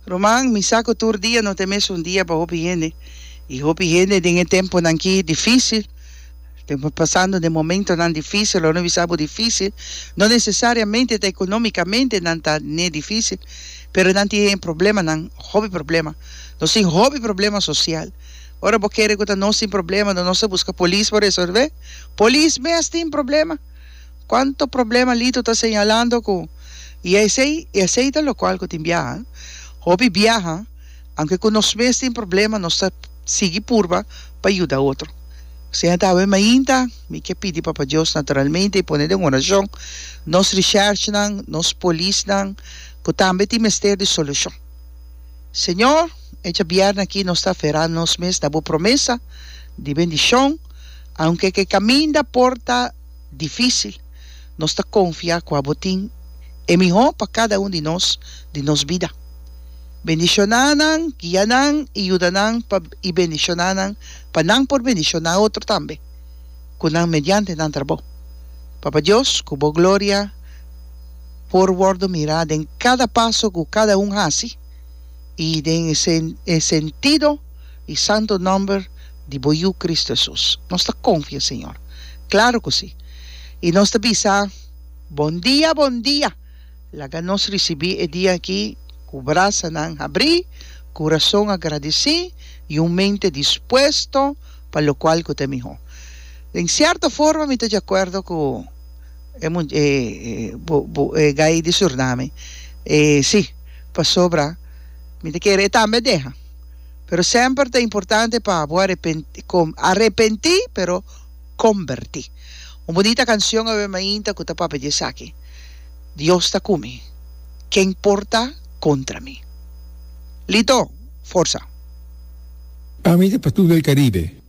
Ruman, mi sa cu tur dia no ta e mesun dia pa hopi hende. I hopi hende den e temponan ki dificil, tempo pasando den momentonan dificil, lo no bisa bo dificil, no necesariamente ta economicamente nan ta ne dificil, pero nan tin e problemanan, hopi problema. Nos tin hopi problema social. Ora bo kere cu ta nos tin problema, nos a busca polis pa resolve? Polis mes tin problema! Cuanto problema Lito ta señalando cu y esey y esey ta locual cu tin biaha, hopi biaha aunke cu nos mes tin problema nos ta sigui purba pa yuda otro. Seña Dawe mainta mi ke pidi Papa Dios naturalmente y pone den oracion nos recherchnan, nos polisnan cu tambe tin mester di solucion. Señor, e djabièrnè aki nos ta aferra nos mes na bo promesa di bendicion aunke ke caminda por ta Difísil. Nos ta konfiá kua Bo tin e mihó pa kada un di nos di nos bida. Bendishoná nan, guia nan i yuda nan pa i bendishoná nan pa nan por bendishoná otro tambe ku nan mediante nan trabou. Papa Dios, ku Bo gloria por wòrdu mirá den kada paso ku kada un hasi i den e sentido di santu nòmber di bo Yu Cristo Hesus. Nos ta konfia, Señor. Klaru ku si. I nos ta bisa, Bon dia, bon dia! Laga nos risibí e dia aki ku brasanan habrí, kurason agradisí i un mente dispuesto pa lokual ku ta e mihó. Den sierto forma mi ta dje akuerdo ku e much e bo bo e gai di Suriname. E si, pasobra mi ta kere e tambe deha. Pero semper ta importante pa bo arepenti, pero komberti. Un bunita kansion a wema ainta ku ta papia di esaki, Dios ta ku mi, ken por ta kontra mi? Lito, forsa! Ami ta pa tur del Caribe.